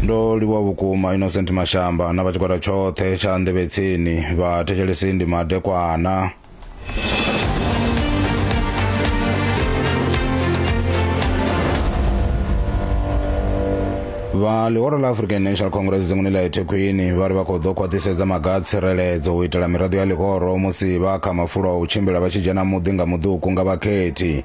ndo livhuwa vhukuma innocent mashamba na vha tshigwada tshoṱhe tsha nḓevhetsini vha thetshelesi ndi madekwana vha ḽihoro ḽa african national congress dzinguni ḽa ethekhwini vha ri vha khou ḓo khwaṱhisedza maga a tsireledzo u itela miraḓo ya ḽihoro musi vha kha mafulo a u tshimbila vha tshi dzhena muḓi nga muḓuku nga vhakhethi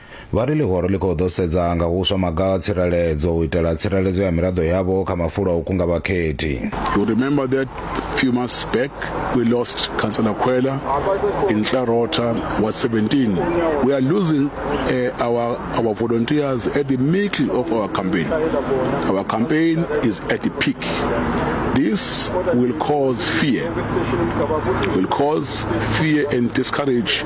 Vha ri ḽihoro ḽi khou ḓo sedza nga huswa maga a tsireledzo u itela tsireledzo ya miraḓo yavho kha mafulo a u kunga vhakhethi. You remember that few months back we lost Councillor Khwela in Clarota Ward 17. We are losing uh, our, our volunteers at the middle of our campaign. Our campaign is at the peak. This will cause fear, will cause fear and discourage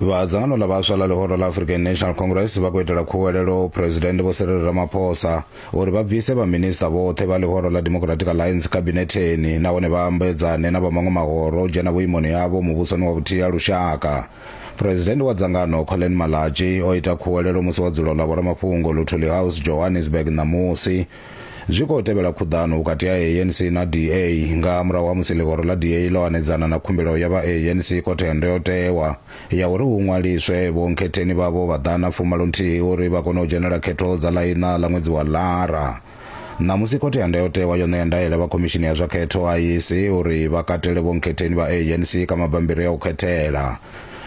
vha dzangano ḽa vhaswa ḽa ḽihoro ḽa african national congress vha khou itela khuwelelo phuresidennde vho serero ramaphosa uri vha bvise vhaminista vhoṱhe vha ḽihoro ḽa democratic alliance khabinetheni nahone vha ambedzane na vha maṅwe mahoro o dzhena vhuimoni havho muvhusoni wa vhuthihi ha lushaka phuresidennde wa dzangano colin malachi o ita khuwelelo musi wa dzulo ḽa vhoramafhungo luthuli house johannesburg ṋamusi Zwi khou tevhela khuḓano vhukati ha ANC na DA nga murahu ha musi ḽihoro ḽa DA ḽo hanedzana na khumbelo ya vha ANC khothe ya ndayotewa ya uri hu ṅwaliswe vhonkhetheni vhavho vha ḓana fumalo nthihi uri vha kone u dzhenela khetho dza ḽa iṋa ḽa ṅwedzi wa Lara. Ṋamusi khothe ya ndayotewa yo ṋea ndaela vha khomishini ya zwa khetho, IEC, uri vha katele vhonkhetheni vha ANC kha mabammbiri a u khethela.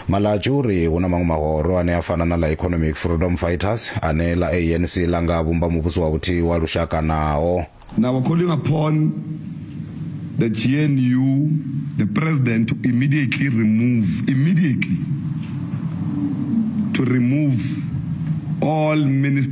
Malatji u ri hu na maṅwe mahoro ane a fana na ḽa Economic Freedom Fighters ane ḽa ANC ḽa nga vhumba muvhuso wa vhuthihi wa lushaka naho. Now we're calling upon the GNU, the President to immediately remove, immediately to remove all Ministers.